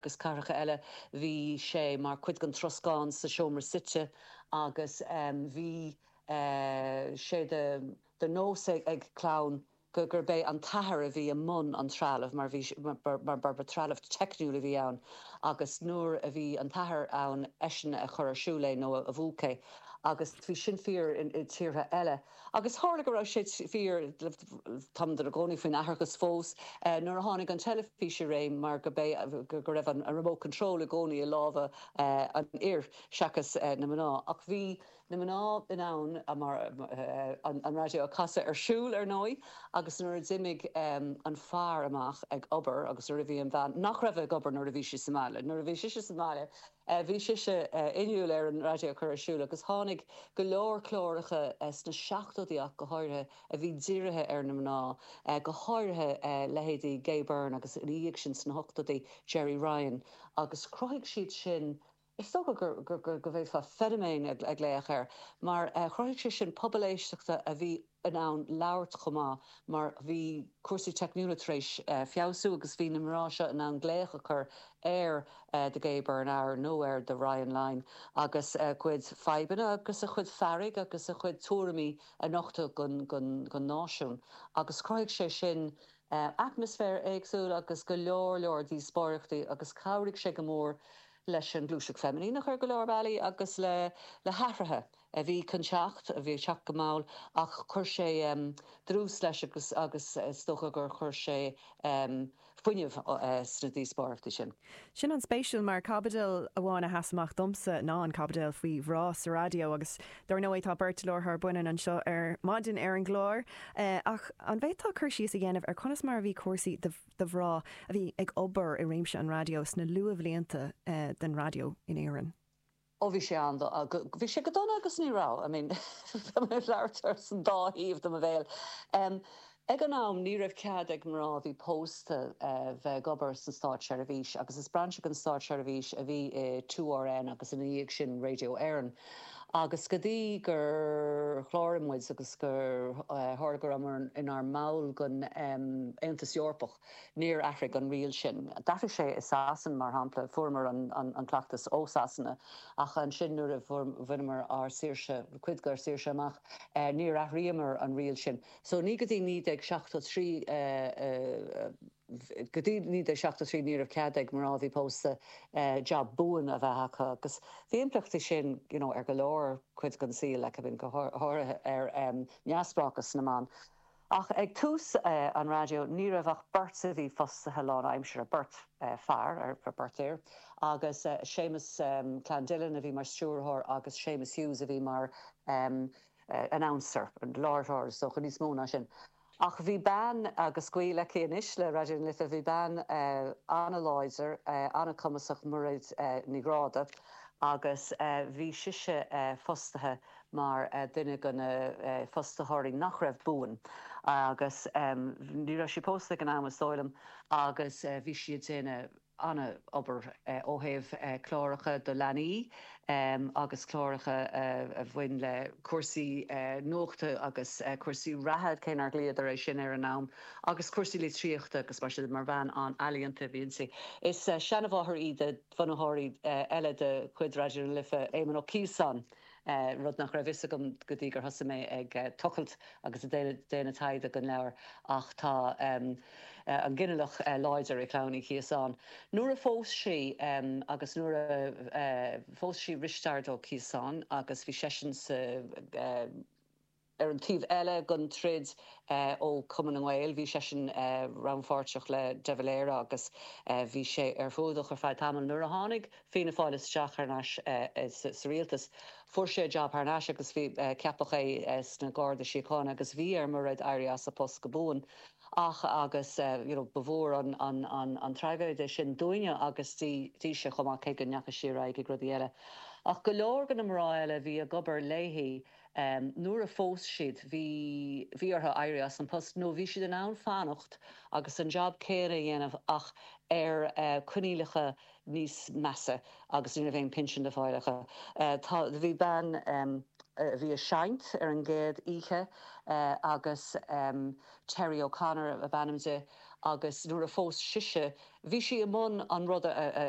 agus cathracha eile. Bhí sé mar chuid den troscán sa seomra suite agus bhí sé de nós ag clann gurbh é an t-athair a bhí i mbun an trealaimh mar ba threalamh teicniúil a bhí ann agus nuair a bhí an t-athair ann eisean a chuir ar siúl é nó a mhúch é agus bhí sin fíor i dtíortha eile. Agus tharla go raibh sé fíor, tá muid inár gcónaí faoin atharthacht fós, nuair a tháinig an teilifís i réim mar gurb é go raibh an remote control i gcónaí i lámha an fhir seachas na mná. Ach bhí na mná in ann an raidió a chasadh ar siúl, ar ndóigh, agus nuair a d'imigh an fear amach ag obair agus nuair a bhí an bhean, nach raibh ag obair nuair a bhí sí sa mbaile, nuair a bhí sise sa mbaile, Bhí sise inniúil ar an raidió a chur ar siúl agus tháinig go leor cláracha sna seachtóidí ach go háirithe a bhí dírithe ar na mná, go háirithe leithéidí Gay Byrne agus ina dhiaidh sin sna hochtóidí, Gerry Ryan agus chruthaigh siad sin, is dócha go bhféadfá feiniméan a ghlaoch air, mar chruthaigh sé sin pobal éisteachta a bhí in ann labhairt chomh maith mar bhí cúrsaí teicniúla tar éis feabhsú agus bhí na mná seo in ann glaoch a chur ar The Gay Byrne Hour nó ar The Ryan Line agus a gcuid fadhbanna agus a gcuid fearg agus a gcuid tuairimí a nochtadh don náisiún agus chruthaigh sé sin atmaisféar éagsúil agus go leor leor díospóireachtaí agus chabhraigh sé go mór leis an ngluaiseacht feiminíneach ar go leor bealaí agus le hathruithe a bhí chun teacht, a bhí ag teacht go mall, ach chuir sé dlús leis agus is dócha gur chuir sé fuinneamh sna díospóireachtaí sin. Sin an-spéisiúil mar caibidil amháin a sheas amach domsa ná an caibidil faoi mhná sa raidió agus dár ndóigh tá beirt láithreoir baineann anseo ar maidin ar an gclár ach an bhféadfá cur síos a dhéanamh ar conas mar a bhí cúrsaí do mhná a bhí ag obair i réimse an raidió sna luathbhlianta den raidió in Éirinn? Ó bhí sé ann do, bhí sé go dona agus ní raibh, I mean, bhí mé ag labhairt as an dá thaobh de mo bhéal. Ag an am ní raibh cead ag mná a bhí pósta bheith ag obair san státseirbhís agus is brainse den státseirbhís a bhí i 2RN agus ina dhiaidh sin Radio Éireann agus go dtí gur chláraigh muid agus gur tharla go raibh muid inár mball den Aontas Eorpach, Níor athraigh an riail sin. D'athraigh sé i Sasain, mar shampla, fuaireamar an cleachtas ó Sasana, ach ansin nuair a bhaineamar ár saoirse, cuid dár saoirse amach, níor athraíomar an riail sin. So ní go dtí 1973, go dtí 1973 ní raibh cead ag mná a bhí pósta jab buan a bheith acu agus bhí impleachtaí sin you know ar go leor cuid den saol, like I mean go háirithe ar neamhspleáchas na mban. Ach ag tús an raidió ní raibh ach beirt a bhí fostaithe lánaimseartha, beirt fear, beirt fhear, agus Séamus Clandillon a bhí mar stiúrthóir agus Séamus Hughes a bhí mar announcer, láithreoir, is dócha, níos mó ná sin. Ach bhí bean, agus gaol aici anois le Raidió na Life, bhí bean an-láidir, an-chumasach, Mairéad Ní Ghráda, agus bhí sise fostaithe, mar dhuine de na fostaitheoirí nach raibh buan agus ní raibh sí pósta ag an am, is dóigh liom, agus bhí sí ag déanamh an-obair ó thaobh cláracha do leanaí agus cláracha a bhain le cúrsaí nuachta agus cúrsaí reatha, cé nár ghlaodar é sin ar an am, agus cúrsaí litríochta agus mar sin de. Mar bhean an-ealaíonta a bhí inti. Is seanmháthair í do bhunaitheoir eile de chuid Raidió na Life, Éamon Ó Ciosáin. rud nach raibh fhios agam go dtí gur thosaigh mé ag tochailt agus ag déanamh taighde don leabhar, ach tá an ginealach láidir i gClann Uí Chiosáin. Nuair a phós sí agus nuair a phós sí Risteard Ó Ciosáin agus bhí seisean sa. Ar an taobh eile den troid ó Cumann na nGael, bhí seisean rannpháirteach le de Valera agus bhí sé ar fuadach ar feadh tamaill. Nuair a tháinig Fianna Fáil isteach thar n-ais sa rialtas, fuair sé job thar n-ais agus ceapadh é sna Garda Síochána agus bhí ar Mhairéad éirí as a phost go buan. Ach agus you know ba mhór an traigéide é sin dúinne agus dise chomh maith cé go ndeachaigh sí ar aghaidh ag rudaí eile. Ach go leor de na mná eile a bhí ag obair léi. Nuair a phós siad, bhí bhí orthu éirí as an post, nó bhí siad in ann fanacht agus an jab céanna a dhéanamh ach ar coinníollacha níos measa agus ní raibh aon pinsean le fáil acu. Tá bhí bean a bhí ag seinnt ar an gcéad oíche agus Terry O'Connor ab ainm di agus nuair a phós sise, bhí sí i mbun an rud a